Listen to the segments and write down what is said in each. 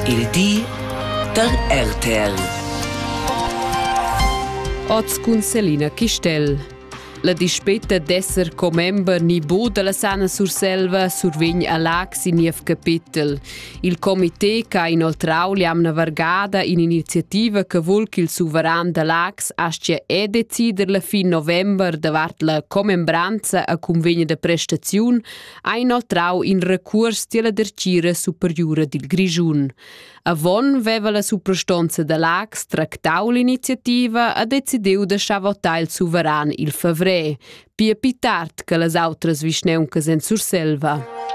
Il di da RTL. Oz cun Selina Chistel. La dispeta d'esser commember ni bu dalla Sana Surselva survegn a Lac sin niev capitel. Il comité che ha inoltrau l'amna vargada in'iniziativa che vul che il suveran da Lax aschia e decider la fin november davart la commembranza a convegna de prestaziun ha inoltrau in recuors tiella dertgira superiura dil Grischun. Avon veva la suprastonza da Lax tractau l'iniziativa e decidiu da schavotar il suveran il favrer, pia pi tard che las outras vischneuncas en Surselva.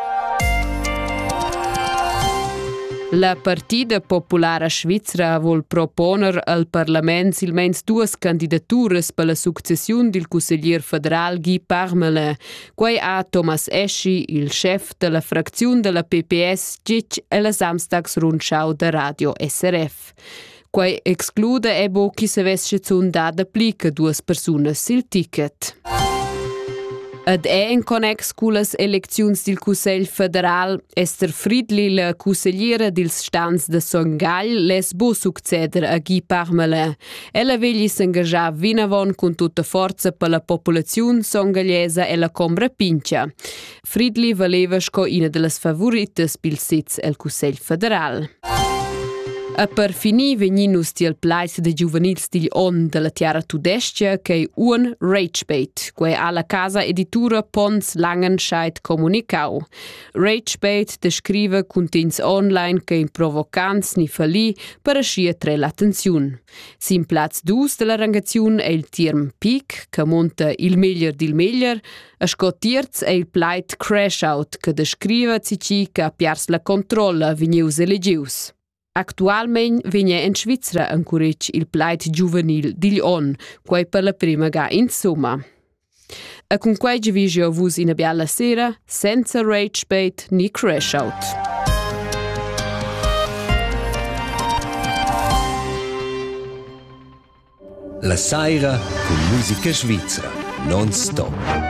La Partida Populara Svizra vol proponer al parlament silmeins duas candidaturas per la successiun dil cusseglier federal Guy Parmelin, Quei ha Thomas Eschi, il schef dalla fracziun dalla PPS, gitg ella Samstags rundschau da Radio SRF. Quei exclude ebo chi savess schizun da dapli che duas persunas sil ticket. Ed è in connex con las elecziuns del Cussegl federal Esther Friedli, la consigliera dils stans de Son Gagl, les bo succeder a Guy Parmelin. Ella vegli s'engagiar vinavon cun tutta forza per la populaziun songagliesa e la combra pincha. Fridli valeva sco ina dellas favoritas pil sez el Cussegl federal. E per finir vegnin nus tiel pleis de giuvenils digl on della tiara tudescia ch'ei un Ragebait, quei ha la casa editura Pons Langenscheid comunicau. Ragepage descriva cuntegns online che in provocants ni fallì per aschi attrair l'attenziun. Sin plaz 2 della rangaziun è il term peak, che monta il meglier dil meglier, a sco terz è il plaid crash out, che descriva cici che ha piars la controlla vegnius elegius. Actualmein vegn en Svizra encuretg il plaid giuvenil digl onn, quei per la prima ga insumma. E cun quei vi jeu vus ina biala sera senza rage bait ni crash out. La saira cun musica svizra, non stop.